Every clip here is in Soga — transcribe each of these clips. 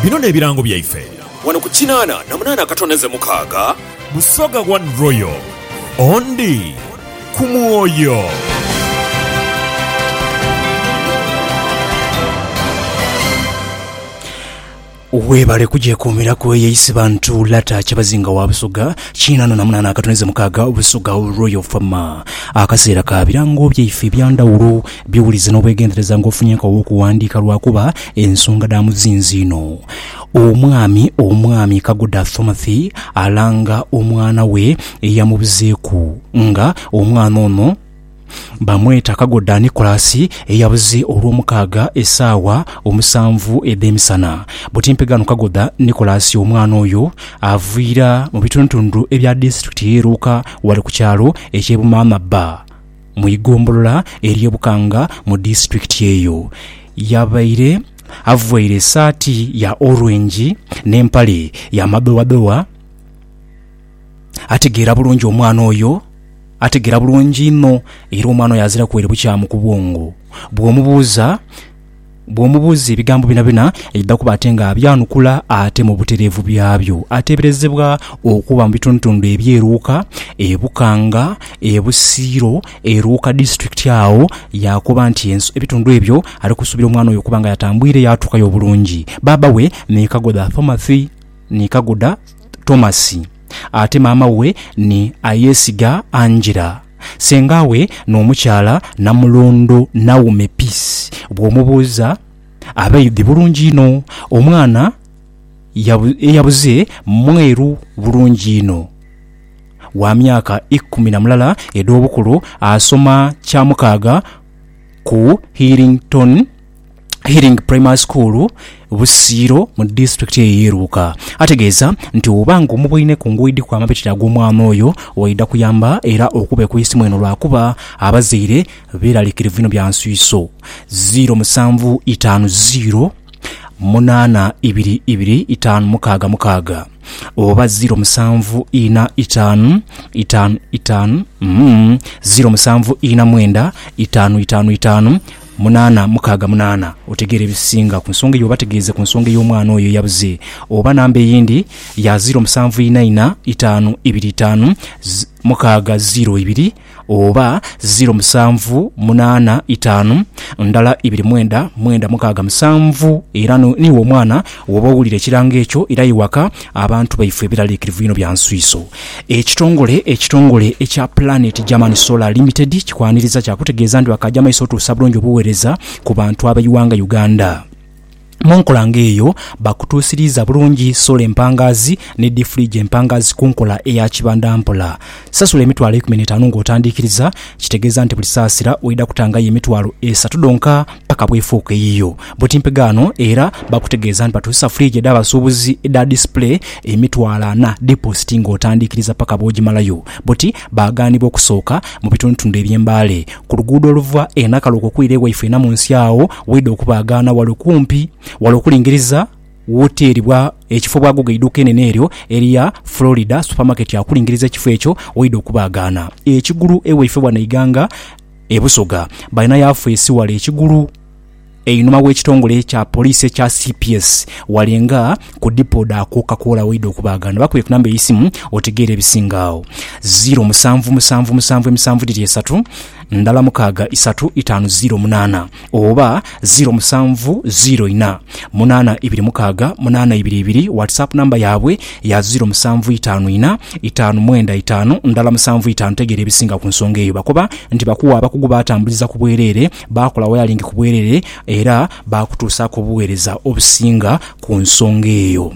Bino n'ebirango byaife. Wano ku kinaana na munaana akatondeze mukaaga. Busoga One Royal, Ondi ku mwoyo. Webale kugyekuumiraku eyo Isibantu Lata Kyabazinga wa Busoga kinaana na munaana akatondeze mukaaga, Busoga Royal Farmer. Akaseera ka birango byaife ebyandhawulo Biwulize n'obwegendereza ng'ofunye enkagho w'okuwandiika lwakuba ensonga dha muzinzi inho. Omwami Omwami Kagoda Thomathy alanga omwana we eyamubuzeeku nga omwana ono bamweta Kagoda Nicholas eyabuze Olwomukaaga esaawa omusanvu edh'emisana. Butimpe ghano Kagoda Nicholas omwana oyo aviira mu bitundutundu ebya disitulikiti ye Luuka wali ku kyalo eky'e Bumaama bba. mu igombolola ery'e Bukanga mu disitulikiti eyo. Yabaire avaire esaati ya orwengi n'empale ya madowadowa. Ategeera bulungi omwana oyo, ategeera bulungi inho era omwana oyo aziraku ere bukyamu ku bwongo. Bw'omubuuza. Bw'omubuuza ebigambo byonabyona, aidha kuba ate nga abyanukula ate mu butereevu byabyo. Ateeberezebwa okuba mu bitundutundu eby'e Luuka, e Bukanga, e Busiro, e Luuka District agho yaakoba nti ebitundu ebyo ali kusuubira omwana oyo okuba nga yatambwire yaatuukayo obulungi. Baaba we ni Kagoda Thomathy ni Kagoda Tomasi ate maama we ni Ayesiga Angella. Senga we n'omukyala namulondho Naomi Peace bw'omubuuza abaidhi bulungi inho. Omwana eyabuze mweru bulungi inho, wa myaka ikumi na mulala edh'obukulu, asoma kyamukaaga ku Healington. Healing Primary School Busiiro mu disitulikiti eyo ey'e Luuka. Ategeeza nti oba ng'omubwine ku nguuyi dhi kwama bitira ag'omwana oyo waidha kuyamba era okube ku isimu eno lwakuba abazaire beeralikirivu inho bya nswiiso. Ziiro musanvu itaanu ziiro munaana ibiri ibiri itaanu mukaaga mukaaga oba ziiro musanvu ina itaanu itaanu itaanu mm, ziiro musanvu ina mwenda itaanu itaanu itaanu Munaana, mukaaga munaana, otegeera ebisinga ku nsonga eyo oba tegeeze ku nsonga ey'omwana oyo eyabuze oba namba eyindi ya ziiro musanvu ina ina itaanu ibiri itaanu mukaaga ziiro ibiri oba ziiro musanvu munaana itaanu ndala ibiri mwenda mwenda mukaaga musanvu era niwo omwana Woba owulira ekirango ekyo, irayo waka. Abantu baife biraliikirivu inho bya nswiiso. Ekitongole ekitongole ekya Planet German Solar Limited kikwaniriza kya kutegeeza nti bakaagya maiso otuusa bulungi obuweereza ku bantu ab'eighanga Uganda. Mu nkola nga eyo, bakutuusiriiza bulungi sola empangaazi ni diifuligi empangaazi ku nkola eya kibandampola. Sasula emitwalo eikumi n'etaanu ng'otandiikiriza, kitegeeza nti buli saasira oidha kutangayo emitwalo esatu dhonka paka bw'efuuka eyiyo. Buti mpegaano era bakutegeeza nti batuusa fridge edh'abasuubuzi edha display emitwalo ana diposit ng'otandiikiriza paka bw'ogimalayo. Buti baagaanibwa okusooka mu bitundutundu eby'e Mbale. Ku luguudo oluva e Nakalu okwo okwira ewaifwe Namunsi agho waidha okubaagaana wale kumpi wale okulingiriza. Wooteeribwa ekifo bwaguuga eiduuka enene eryo erya Florida Supermarket akulingiriza ekifo ekyo waidha okubaagaana ekigulu ewaife wano eighanga e Busoga. Balina yafeesi wale ekigulu einhuma w'ekitongole kya poliisi ekya cps wale nga ku dipo dha Coca Cola waidha okubaagaana. Bakubire ku namba ey'eisimu otegeere ebisinga agho, ziiro musanvu musanvu musanvu emisanvu dhiri esatu, ndala mukaaga isatu itaanu ziiro munaana. oba ziro musanvu ziro inha munaana ibiri mukaaga munaana ibiri ibiri, WhatsApp number yaabwe ya ziro musanvu itaanu inha itaanu mwenda itaanu ndhala musanvu itaanu tegeera ebisinga ku nsonga eyo bakoba nti bakuwa abakugu baatambuliza ku bwereere baakola wayalingi ku bwereere era baakutuusaaku obuweereza obusinga ku nsonga eyo.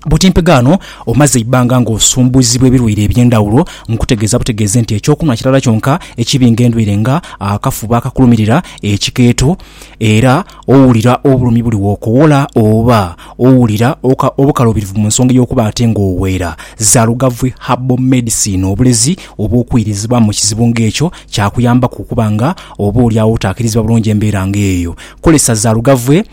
Butimpiga ano omaze eibbanga ng'osumbuizibwa ebilwaire eby'endhawulo, nkutegeeza butegeeze nti eky'okunhwa kirala kyonka ekibinga endwaire nga akafuba akakulumirira, ekikeeto era owulira obulumi buli w'okowola oba owulira obukaluubirivu mu nsonga ey'okuba ate ng'oweera. Zalugavwi Herbal Medicine obulezi obw'okwirizibwamu mu kizibu ng'ekyo kyakuyambaku okuba nga oba oli agho otaakirizibwa bulungi embeera ng'eyo. Kozesa zalugavwi.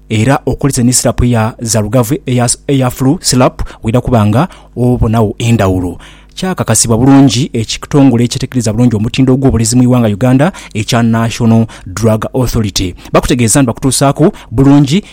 Era okozese ni sirapu ya zalugavu eya, eya flu syrup waidha kuba nga obonagho endhawulo. Kyakakasibwa bulungi ekitongole ekyetegereza bulungi omutindo gw'obulezi mu ighanga Uganda ekya National Drug Authority. Bakutegeeza nti bakutuusaaku bulungi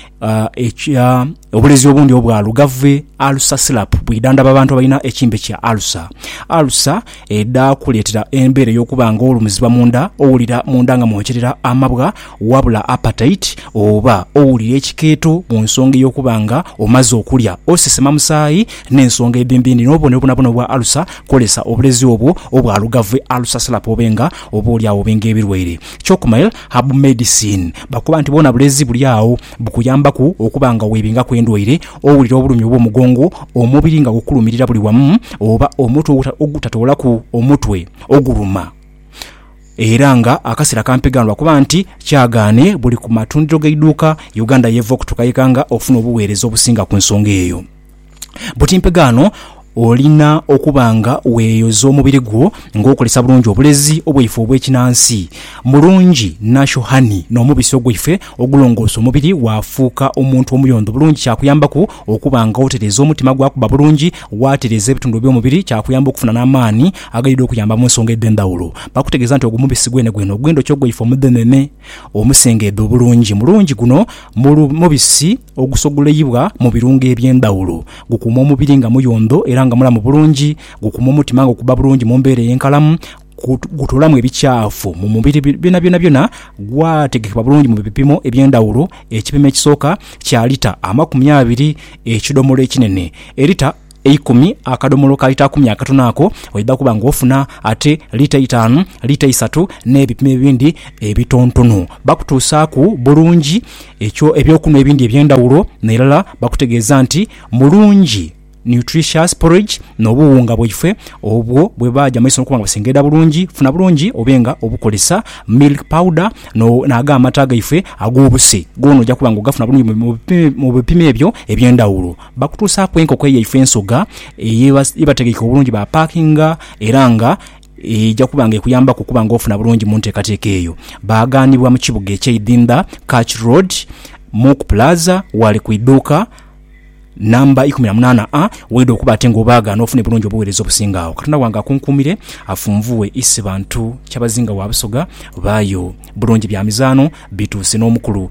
ekya obulezi obundi obwa lugave alusa syrup bwidhandhaba abantu abalina ekimbe kya alusa. Alusa. edhakuleetera embeera ey'okuba nga olumizibwa mu nda, owulira mu nda nga mwookyerera amabwa, wabula appetite, oba owulira ekikeeto mu nsonga ey'okuba nga omaze okulya, osesema musaayi, n'ensonga edhindhi ndhi. N'obubonero bwonabwona obwa alusa, kozesa obulezi obwo obwa lugave alusa syrup obe nga oba oli agho obe nga ebirwaire. Cocmail Herbal Medicine bakoba nti bwona bulezi buli agho. Bukuyambaku okuba nga weebingaku endwaire, owulira obulumi obw'omugongo, omubiri nga gukulumirira buli wamu, oba omutwe ogutatoolaku omutwe oguluma. Era nga akaseera kampi ghano lwa kuba nti kyagaane buli ku matundiro g'eiduuka, Uganda y'eva okutukaika nga ofuna obuweereza obusinga ku nsonga eyo. Buti mpegaano olina okuba nga weeyoza omubiri gwo ng'okozesa bulungi obulezi bwaife obw'ekinansi. Mulungi Nasho Honey n'omubisi ogwaife ogulongoosa omubiri waafuuka omuntu omuyondho bulungi kyakuyambaku okuba nga otereeza omutima gwakuba bulungi, waatereeza ebitundu eby'omubiri kyakuyamba okufuna n'amaani agaidha okuyamba mu nsonga edh'endhawulo. Bakutegeeza nti ogwo mubisi gwenegwene ogw'endhoki ogwaife omudhenene omusengeedha obulungi. Mulungi guno mubisi. Ogusogoleibwa mu birungo eby'endhaghulo gukuuma omubiri nga muyondho era nga mulamu bulungi, gukuuma omutima nga okuba bulungi mu mbeera ey'enkalamu, gutoolamu ebikyafu mu mubiri byona byonabyona, gwategekebwa bulungi mu bipimo eby'endhaghulo, ekipimo ekisooka kya lita amakumi abiri, ekidhomolo ekinene, elita. eikumi, akadomolo ka lita kumi akatono ako, oidha kuba ng'ofuna ate lita eitaanu, lita eisatu n'ebipimo ebindi ebitontono. Bakutuusaaku bulungi ekyo eby'okunhwa ebindi eby'endhaghulo n'irala bakutegeeza nti mulungi, nutritious, porridge n'obuwunga bwaifwe obwo bwe baaja mu maiso n'okuba nga busengeeda bulungi. Funa bulungi obe nga obukozesa milk powder n'ago amata gaife ag'obuse, goona oja kuba ng'ogafuna bulungi mu bipimo ebyo eby'endhaghulo. Bakutuusaaku enkoko yaife ensoga ye bategeike obulungi baapakinga era nga eja kuba nga ekuyambaku okuba nga ofuna bulungi mu nteekateeka eyo. Baaghanibwa mu kibuga eky'eidhindha Church Road, Mook Plaza ghale ku idhuuka namba ikumi na munaana A, waidha okuba ate nga obaagha n'ofune bulungi obuweereza obusinga agho. Katonda wange akunkuumire, afunvughe Isi Bantu Kyabazinga wa Busoga, baayo bulungi bya mizaano bituuse n'omukulu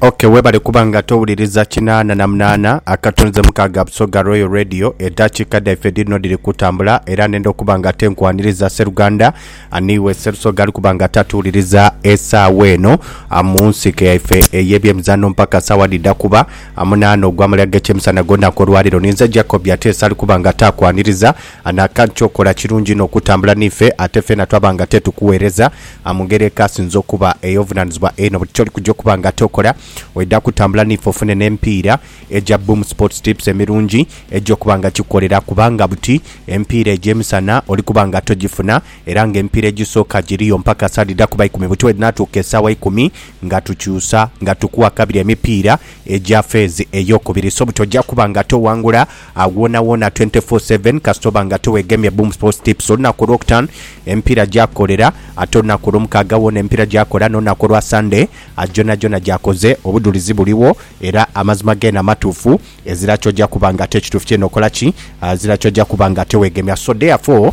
Ok webale kuba nga towuliriza kinaana na munaana akatunze mukaaga Busoga Royal Radio edaakiika dhaife dhirino dhiri kutambula era nenda okuba nga ate nkwaniriza Sseruganda aniiwe Sserusoga ali kuba nga ate atuwuliriza esaawa eno ah, mu nsiike yaife ey'ebyemizaano mpaka saawa dhidha kuba ah, munaana ogw'amale ag'ekyemisana ag'olunaku olwaleero. Ninze Jacob Ateesa ali kuba nga ate akwaniriza Anaaka ky'okola kirungi inho okutambula n'ife, ate feena twaba nga tetukuweereza mu ngeri ekaasinze okuba ey'obuvunaanizibwa einho. Buli ky'oli kuja okuba nga tokola, oidha kutambula n'ife ofune n'emipiira egya Boom Sports Tips emirungi egy'okuba nga kikukolera kubanga buti emipiira egyo emisana oli kuba nga togifuna era ng'emipiira egisooka giriyo mpaka saa dhidha kuba ikumi. Buti bwedhinaatuuka esaawa ikumi nga tukyusa nga tukuwa kabiri emipiira egya feezi ey'okubiri. So buti oja kuba nga toghangula. Agho wonawona twenty four seven kasita oba nga tiwegemye Boom Sports Tips. Olunaku olwokutaanu emipiira gyakolera, ate olunaku olwomukaaga wona emipiira gyakola n'olunaku olwa Sunday gyonhagyona gyakoze. Obudhulizi buligho era amazima geene amatuufu, ezira ky'oja kuba nga ate kituufu kyeene okola ki? Ezira ky'oja kuba nga ate weegemya. So therefore.